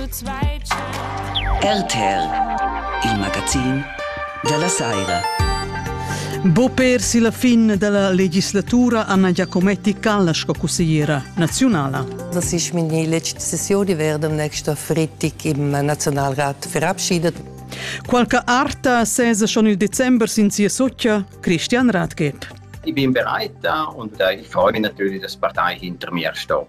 RTR, il magazin della Saira. Bo persi la fin della legislatura Anna Giacometti Calla sco consigliera nazionala. Das ist meine letzte Session. Ich werde am nächsten Freitag im Nationalrat verabschiedet. Qualche arta sesa schon il Dezember sin sia soccia Christian Radgeb. Ich bin bereit da und äh, ich freue mich natürlich, dass die Partei hinter mir steht.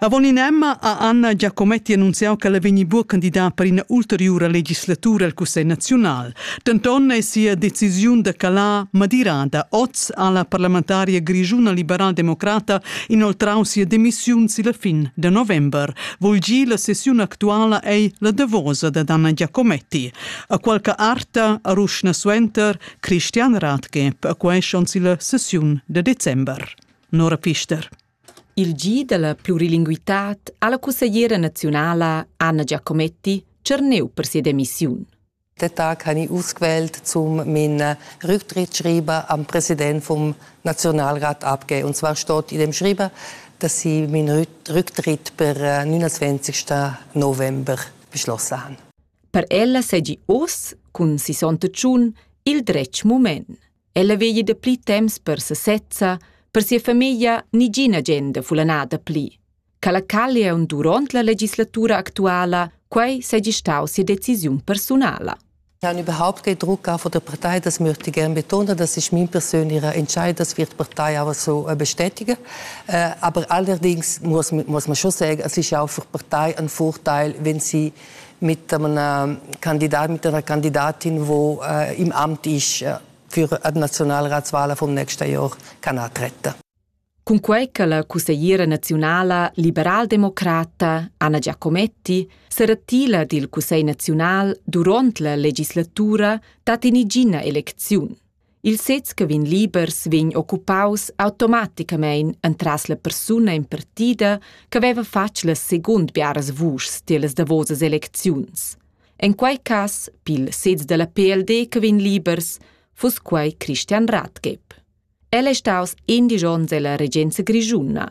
Avon in emma ha Anna Giacometti annunziau che la vegni buca candidar per ina ulteriura legislatura al Cussegl naziunal. Denton è sia decisiun da calar madirada. Oz ha la parlamentaria grischuna liberal-democrata inoltrau sia demissiun silla fin da november. Vul gi la sessiun actuala ei la davosa da Anna Giacometti. A qualche arta a Ruschna suenter Christian Rathke, perquai schon silla sessiun de december. Nora Pister. Il G della plurilinguitad ha la cussegliera nazionala Anna Giacometti tscherneu per sia demissiun. Den Tag habe ich ausgewählt, um meinen Rücktritt schreiben am Präsident vom Nationalrat abgeben. Und zwar steht in dem Schreiben, dass ich meinen Rücktritt per 29. November beschlossen habe. Per ella seigi oz, cun sis onns tschun, il dretg mument. Ella vegli dapli temps per sesezza, per sia famiglia nigina agenda fulanada pli. Ca la callion duront la legislatura actuala, quei seigi stau sia decisiun personala. Ich habe überhaupt keinen Druck auch von der Partei, das möchte ich gerne betonen. Das ist mein persönlicher Entscheid, das wird die Partei auch so äh, bestätigen. Äh, aber allerdings muss, muss man schon sagen, es ist auch für die Partei ein Vorteil, wenn sie mit einem Kandidat, mit einer Kandidatin, wo äh, im Amt ist äh, für die Nationalratswahl vom nächsten Jahr kann antreten. Cunquei che la cussegliera nazionala liberaldemocrata Anna Giacometti seratila dil Cussegl nazional duront la legislatura dat inigina elecziun. Il sez che vegn libers vegn occupaus automaticamein entras la persuna impartida che veva fatg las secund biaras vuschs tiellas davosas elecziuns. En quei cass, pil sez dalla PLD che vegn libers, fuss quei Christian Rathgeb. El è staus indig onns ella regenza grischuna.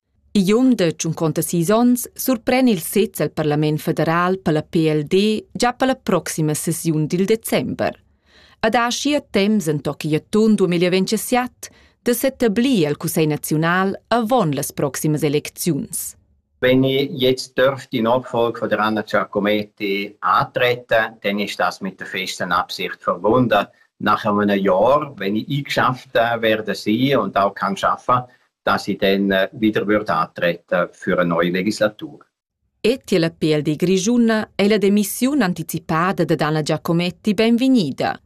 Igl um de tschunconta sis onns surpren il sez al parlament federal per la PLD gia per la proxima sesiun dil december. Ad aschia temps entochi atun 2027 de s'etablir al Cussegl naziunal avon las proximas elecziuns. Wenn ich jetzt dürfte in Nachfolge von Anna Giacometti antreten, dann ist das mit der festen Absicht verbunden. Nach einem Jahr, wenn ich eingeschafft werde sein und auch kann arbeiten, datti den wieder wird antreten für eine neue Legislatur. E tier la PLD grischuna è la demissiun anticipada da Dana Giacometti benvegnida.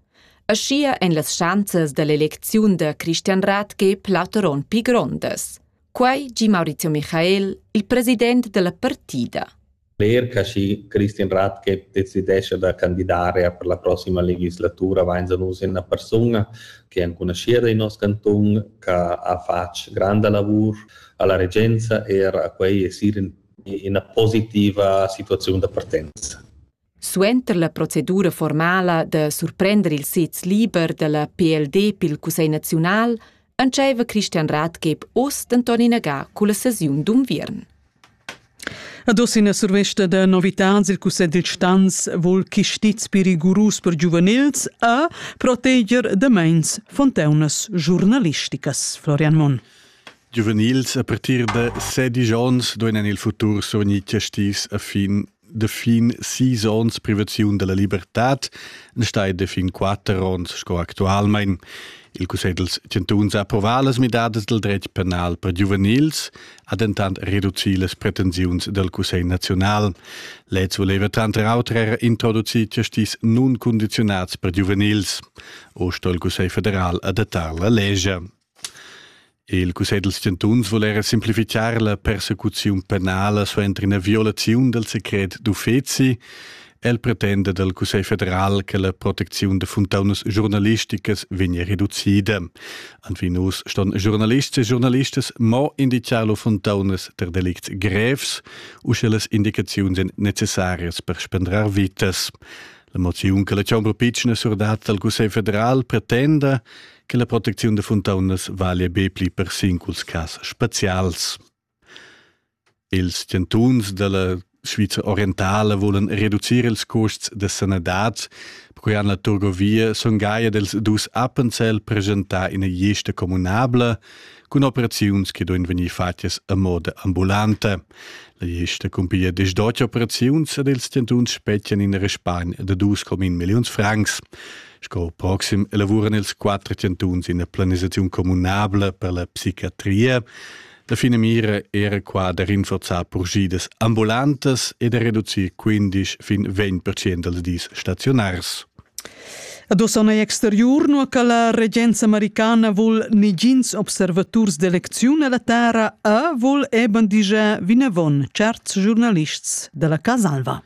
Aschia en las schanzas dall'elecziun da Christian Rathke plauteron pi grondas. Quai gi Maurizio Michael, il president della partida. cler che schi Christian Rathgeb decidescha da candidar er per la prossima legislatura vainsa nus ina persuna che è enconuschida in nos cantun che ha fatg granda lavur alla regenza er a quei esir in ina positiva situaziun da partenza. Suenter la procedura formala da surprender il sez liber dalla PLD pil Cussegl naziunal entscheiva Christian Ratgeb oz denton inaga culla sesiun d'unviern. Ad oz ina survesta da novitads. Il Cussegl dil Stans vul chistiz per rigurus per giuvenils e proteger da meins fonteunas giurnalisticas. Florian Monn. Giuvenils a partir da sedisch onns duein en il futur survegnir chistiz a fin de fin sis onns privaziun della libertad stai de fin quatter onns sco actualmein Il Cussegl dels Chantuns ha approvat las midadas del dretg penal per giuvenils, ha dentant reduci las pretensiuns del Cussegl naziunal. Lez voleva tranter auter er introducir justis nun condizionats per giuvenils. O sto il Cussegl federal adattar la legge. Il cussegl dals chantuns vul era simplificar la persecuziun penala suenter ina violaziun dal secret d'uffezi. El pretenda dal Cussegl federal che la protecziun da funtaunas giornalisticas vegnia reducida. Anvinus ston giornalists e giornalistas mo indicar lur funtaunas per delicts grevs u sche las indicaziuns èn necessarias per spendrar vitas. La moziun che la chombra pitschna surdat dal Cussegl federal pretenda che la protecziun da funtaunas valia be pli per singuls cas spezials. Ils chantuns della Sviza orientale volen reducir ils custs de sanadad, perquei han la Turgovia son gaia dels dus Appenzell presentar ina gliesta communabla cun operaziuns che duin vegnir fatgas a moda ambulanta. La gesta cumpiglia des dotg operaziuns ed ils tentuns spetgan in respagn da 2,1 milliuns francs. Sco proxim elavuran ils quattro tentuns ina planisaziun communabla per la psichiatria. La fine mira era qua da rinforzar progidas ambulantas e da reducir 15 fin 20 dals dis stationars. Ad Ossana exteriur, nua che la regenza americana vul negins observaturs d'elecziun alla terra, a vul eben diger vinavon certs giornalists della Casa Alva.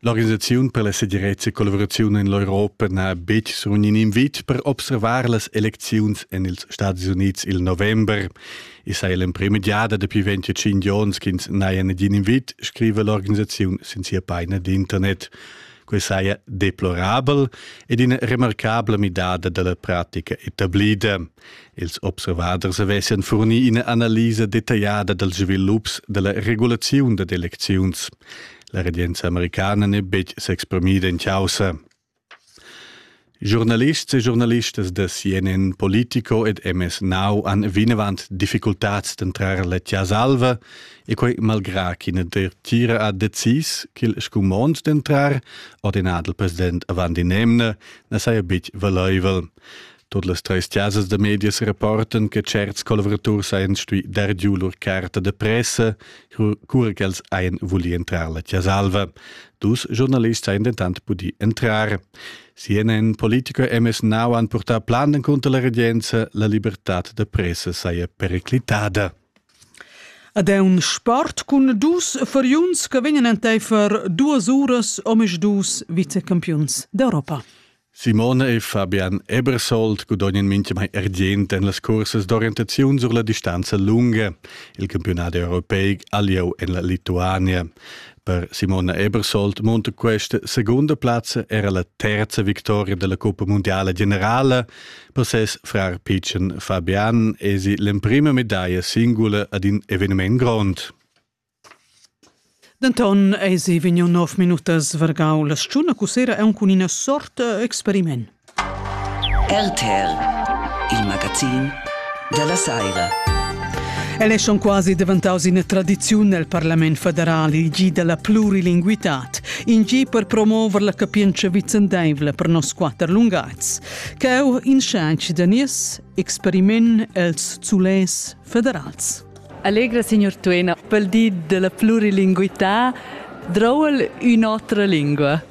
L'organisaziun per la segirezza e collaborazione in l'Europa n'ha betg surun in invit per observar las elecziuns en ils Stati Uniti il november. I sei l'emprima giada dapi 25 giorns ch'ins n'haja negin invit, scrive l'organisaziun sin sia pagina d'internet. Quei saja deplorabel ed ina remarcabla midada dalla pratica etablida. Ils observaders avessan furni ina analisa detagliada dals svilups della regulaziun dad elecziuns. La regenza americana n'è betg s'exprimida in causa. Giornalists e giornalistas da CNN Politico ed MS Now han vinavant difficultads d'entrar la Tiasalva e quai malgrà ch'ina dertira ha decis ch'il scumond d'entrar, ordinà dal president avant in'emna, na saja betg valaivel. Tot las treis tiasas da medias rapportan che certs collavuraturs hajan stuì dar giu lur carta de pressa, cura ch'els hajan vulì entrar la Tiasalva. Dus giornalists hajan dentant pudì entrar. CNN politico MS Now han purtà plan encunter la regenza, la libertad da pressa saja periclitada. Ad è un sport cun dus furiuns che vegnan enteifer duas uras omisdus vicecampiuns d'Europa. Simone e Fabian Ebersold gudognan mintgamai argient en las cursas d'orientaziun sur la distanza lunga, il campionat europeic alieu en la Lituania. Per Simona Ebersold munta questa segunda plazza era la terza victoria della Coppa Mondiale Generale per ses frar Pichen Fabian e si l'emprima medaglia singula ad in evenement grond. Denton eis ei vegniu nov minutas vargau la stgiuna cu sera aunc cun ina sort eh, experiment. RTL, il magazin dalla saira. El è schon quasi daventaus ina tradiziun nel Parlament federal, il gi della plurilinguitad, in gi per promover la capientscha vicendaivla per nos quatter lungazs. Cheu in schanci da nies experiment els zulès federals. Allegra signor Tuena, pel di della plurilinguità, droul ün'otra lingua.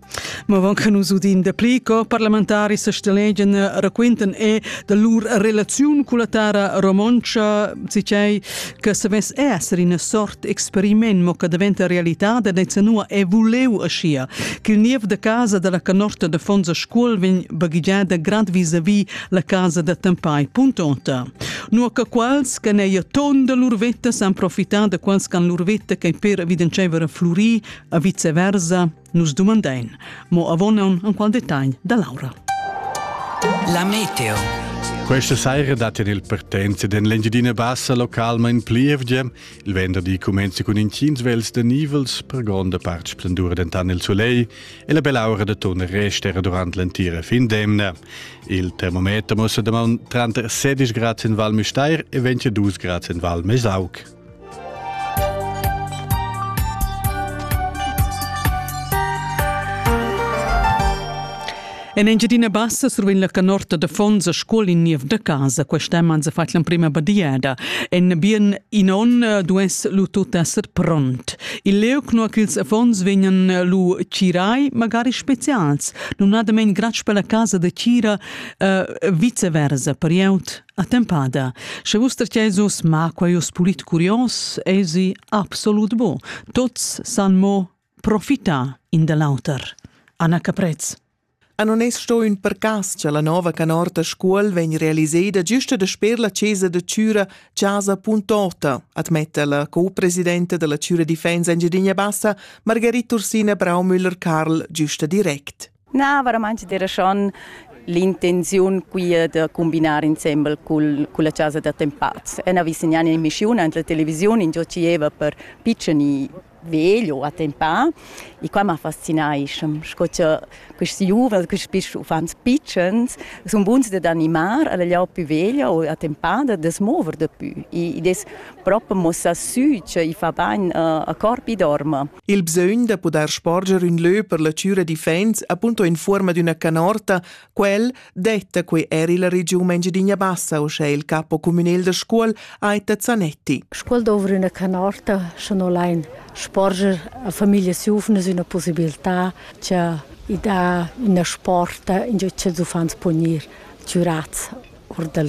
Ma avant che nus udim dapli co parlamentaris sastelegan raquintan e da lur relaziun con la terra romontscha, sicei che savess esser ina sort experiment mo che diventa realtà da Zenua e vuleu aschia che il niev da casa dalla canorta da Fonza Scuol vegn baghigiada grad vis-a-vis la casa da Tempai Puntonta. Nu che quals che neia ton da lur vetta san profitar da quals che han lur vetta che per evidencever a flurì, a vice versa, Nus dumandein mo avonon en qual detagl da Laura. La meteo. Questa saira dat in il partenza den l'Engiadina Bassa localment plievgia. Il venderdi comenza con incins vels de nivels per gronda part splendura dentan il soleil e la bella aura de tonne restera durant l'entira fin d'emna. Il termometer mostra da 30 16 grad in Val Müstair e 22 grad in Val Mesauc. En Engiadina Bassa survegn la canorta da fons a scola in niev da casa. Quest'anno han se fatg l'emprima badiada. En bien in on eh, duess lu tut esser pront. Il leuc nua ch'ils affons vegnan eh, lu cirai, magari specials. Nun ha damen gratsch per la casa da Cira uh, viceversa per jeut. Attempada, sche vus tercesus ma quaios pulit curios, esi absolut bo. Tots san mo profita in da l'auter. Anna Caprez. A non es sto ün percas cha la nova canorta scuol vegn realiseda giusta dasper la chesa da Chüra Chasa.ota, admetta la co-presidenta della Chüra Difensa Engidinia Bassa, Margarita Ursina Braumüller-Karl, giusta direct. Na, veramente era schon l'intenziun quia da combinar insembel cul, culla chasa da tempaz. E na visignan in mischiun ant la televisiun in giò cieva per piccini vegl o attempà e qua m'ha fascinai sco cha questi giuvens, questi piss uffants pitschens sun buns dad animar alla lia più veglia o attempada da smover da pü e ed es propo mossà sü che i fa bain a corpi dorma. Il bsögn da pudair sporger ün lö per la chüra d'iffaints appunto in fuorma d'üna canorta, quel detta quei er illa regiun Engidinia Bassa, uschè il capo cumünel da Scuol, Aita Zanetti. Scuol dovra üna canorta, scha no lain sporger a famiglias giuvnas üna possibilità, cha i dà üna sporta ingio ch'ils uffants pon ir chürats. or da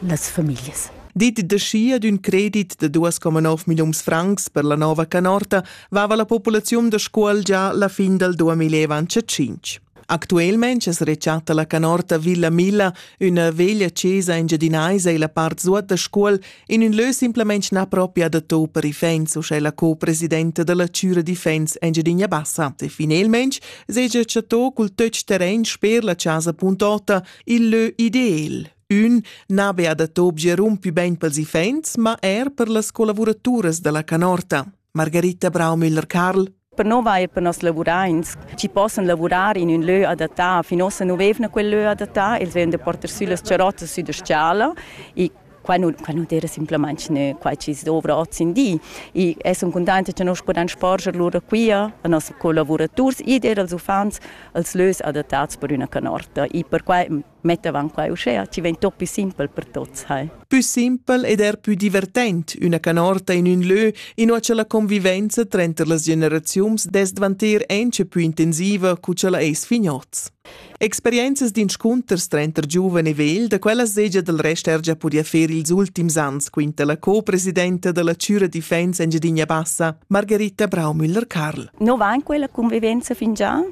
las famiglias. Detg ad ün credit da 2,9 milliuns francs per la nova canorta vava la populaziun da Scuol già la fin dal 2025. Actuelmente es rechatta la canorta Villa Milla, üna veglia chesa engiadinaisa illa part suot da Scuol, in ün lö simplamaing na propria da to per ifens, uschè la co-presidenta da la Chüra d'Ifens Engiadina Bassa. E finelmaing segia chatto cul töch terrain sper la chasa.8 Il lö ideal Ün n'ha be adat objer un pü bain pels iffaints, ma er per las collavuraturas da la canorta. Margarita Braumüller-Karl Per nova e per nos lavuraints chi possan lavurar in ün lö adattà, fin ossa nu vevna quel lö adattà, els vevan da porter sü las charrottas sü da s-chala e Quai nu, quai nu d'eira simplamaing gnü quai chi dovra hoz in di. I es sun cuntainta cha nus pudan sporger lura quia a noss collavuraturs ed eir als uffants als lös adattats per üna canorta. I perquai mettavan quai uschea chi vegn tuot pü simpel per tuots, hai. Pü simpel ed er pü divertent üna canorta in ün lö, inua cha la convivenza tranter las generaziuns dess dvanter auncha pü intensiva cu cha la ais fin hoz. Experienzas d'inscunters tranter giuven e vegl, da quella segia dal rest er già pudia fer ils ultims ans, quinta la co-presidenta da la Cura Difensa Engiadina Bassa, Margarita Braumüller-Karl. No va in quella convivenza fingià?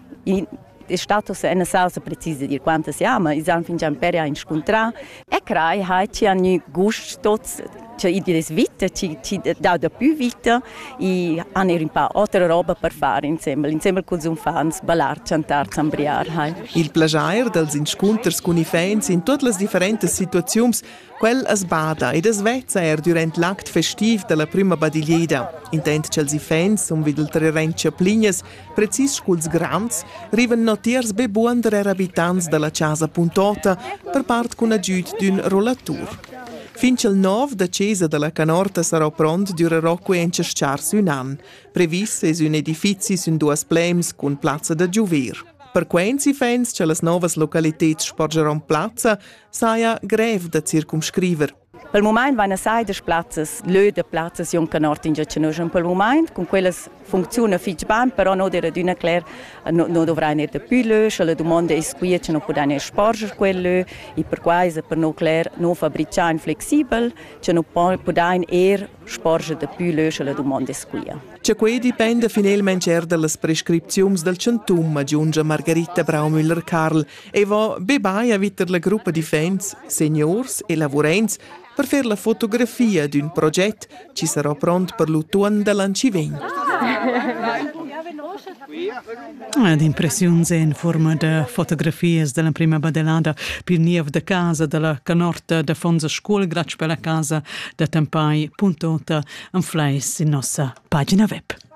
è stato una salsa precisa di quanto siamo, i hanno fingià imperi a incontrare, E crei hai ti ha gnü gust tots cioè i di les vita ti ti dau da pü vita i han eir ün pa otra roba per far insembel insembel culs uffants ballar chantar zambriar hai il plajair dals inscunters cun iffaints in tuot las differentas situaziuns quel as bada ed as vezza eir dürant l'act festiv da la prüma badiglieda intent cha'ls iffaints sun vid ulteriorent chaplinas precis culs grands, rivan notiers be buonder habitants dalla casa puntota per part cun agüd d'ün rollatur. Fin ch'el nov da chesa dalla canorta sarà pront dürerà quencha s-chars ün an. Previs es ün edifizi sün duas plems cun plazza da giuver. Per quents ifens cha las novas localiteds sporgeron plazza, saja grev da circumscriver Per mumaint vaina saidas plazzas, lö da plazzas juncan ord ingio nus in pel mumaint, cun quellas funcziuna fich bain, però no d'eira adüna cler, no, no dovrain eir dapü lö, scha la dumonda es quia, scha nu pudain eir sporger quel lö e perquai es per no cler no fabrichain flexibel, scha nu pudain eir sporger dapü lö, scha la dumonda es quia. Cha quai dipenda finelmaing eir da las prescripziuns dal chantun, agiungia Margarita Braumüller-Carl, Avon bebai avittet la gruppa d'iffaints seniors e lavurents per fer la fotografia d'ün proget chi sarà pront per l'utuon da l'an chi vegn. Ed impressiuns in fuorma da fotografias dalla prima badelada pil niev da casa dalla canorta da Fonza Scuol glatsch per la casa da Tempai.ota an fleis sin nossa pagina web.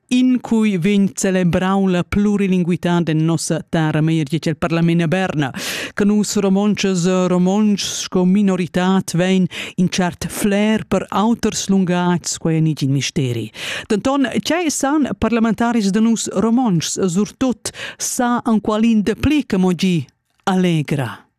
in cui vegn celebrau la plurilinguità de nossa terra meir dice il Parlament a Berna, che nus romontschas e romontschs sco minoritad vein in cert flair per auters lungats quei nigin misteri. Denton, ce san parlamentaris de nus romontschs, surtut sa an qualin de pli che mo gi allegra.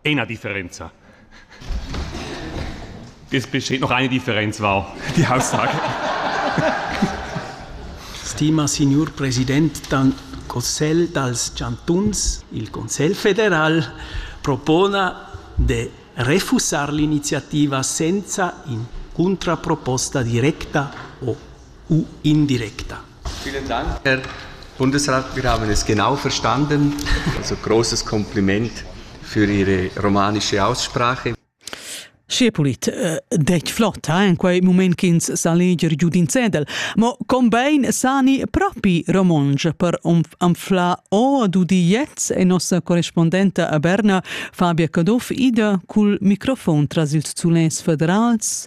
Ena differenza. Es besteht noch eine Differenz, wow, die Aussage. Stima signor President del Consiglio dels Chantuns, il Consiglio federal propona de refusar l'iniziativa senza in contraproposta directa o u indirecta. Vielen Dank, Herr Bundesrat Wir haben es genau verstanden. Also großes Kompliment für Ihre romanische Aussprache. Schepulit äh, dec flotta en quei moment ch'ins sa leger giu d'in cedel, mo combein sani propi romonge per anfla o dudi jets e nossa correspondenta a Berna Fabia Caduff ida cul microfon tras ils zulens federals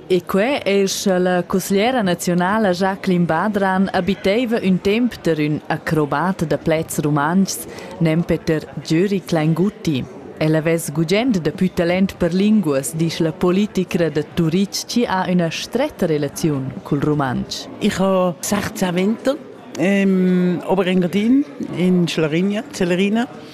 E quei ei sche la cusgliera naziunala Jacqueline Badran habiteva ün temp der ün acrobat da plaids rumantschs, nempe der Gyuri Klainguti. El havess gugent dapü talent per linguas, disch la politicra da Turitg chi ha üna stretta relaziun cul rumantsch. Ich habe 16 Winter im Oberengadin in Schlarigna, Celerina.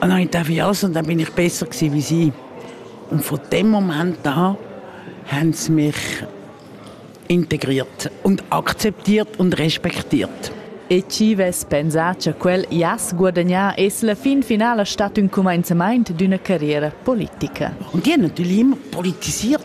Nein, darf ich auch sagen, da bin ich besser gewesen wie Sie. Und von dem Moment an haben sie mich integriert und akzeptiert und respektiert. E ci vess pensà che quel jass guadagnà es la fin finala stat ün cumenzamaint d'üna carriera politica. Und die haben natürlich immer politisiert.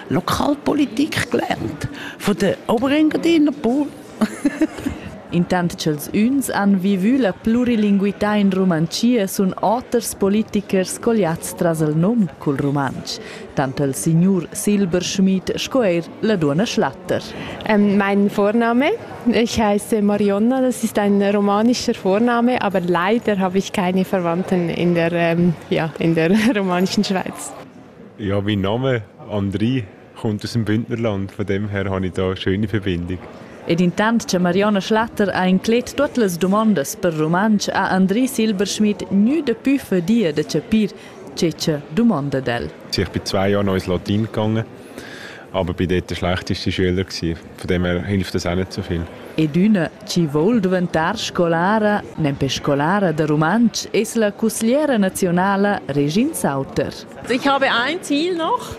Lokalpolitik gelernt von der Oberengadiner Pol. Intant ch'els üns han vivü la plurilinguità in Rumantschia sun oters politichers colliats tras il nom cul rumantsch, tant il signur Silberschmidt sco eir la duonna Schlatter. Mein Vorname. Ich heiße Marionna, das ist ein romanischer Vorname, aber leider habe ich keine Verwandten in der, ja, in der romanischen Schweiz. Ja, mein Name Andri kommt aus dem Bündnerland, von dem her habe ich da eine schöne Verbindung. Ed intant che Marionna Schlatter ha inclet tuot las dumondas per rumantsch ha Andri Silberschmidt gnü dapü fadia da chapir che cha dumanda d'el. Ich bin zwei Jahre noch ins Latin gegangen Aber bin dort der schlechteste Schüler gewesen. Von dem her hilft das auch nicht so viel. Ed üna chi voul duventar scolara, nempe scolara da rumantsch, es la cusgliera nazionala Regin Sauter. Ich habe ein Ziel noch.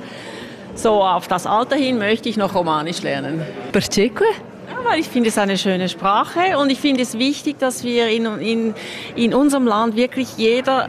So auf das Alter hin möchte ich noch Romanisch lernen. Perceque? weil ich finde es eine schöne Sprache und ich finde es wichtig, dass wir in, in, in unserem Land wirklich jeder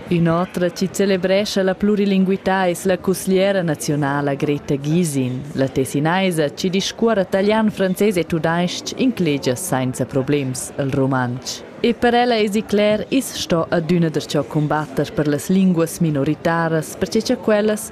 In'otra chi celebrescha la plurilinguità es la cusgliera naziunala Greta Gysin. La tessinaisa chi discuorra talian, frances e tudais-ch inclegia sainza problems il rumantsch. E per ella esi cler, i's sto adüna darcheu cumbatter per las linguas minoritaras, perche cha quellas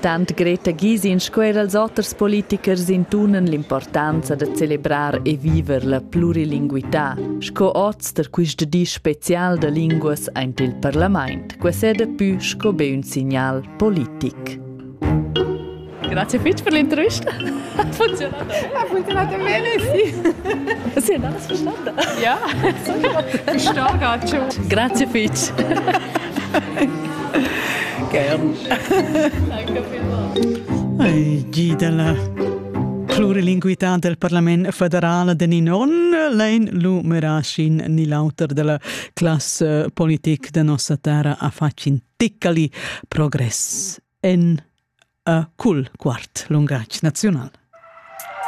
Tant Greta Gisin sco er els oters politichers intunan l'importanza da celebrar e viver la plurilinguità sco oz da quist di special da linguas aint il parlament, quas è dapü sco be ün signal politic. Grazie fitg per l'intervista. Ha funzionato bene? Ha funzionato bene, sì. Sì, andava ascoltando. Ja, sto Grazie fitch. Gi dalla plurilinguità del Parlament federal de Ninon, lein lu merashin ni l'auter della classe politique de nossa terra affacin ticcali progress en a cul quart lungatg nazional.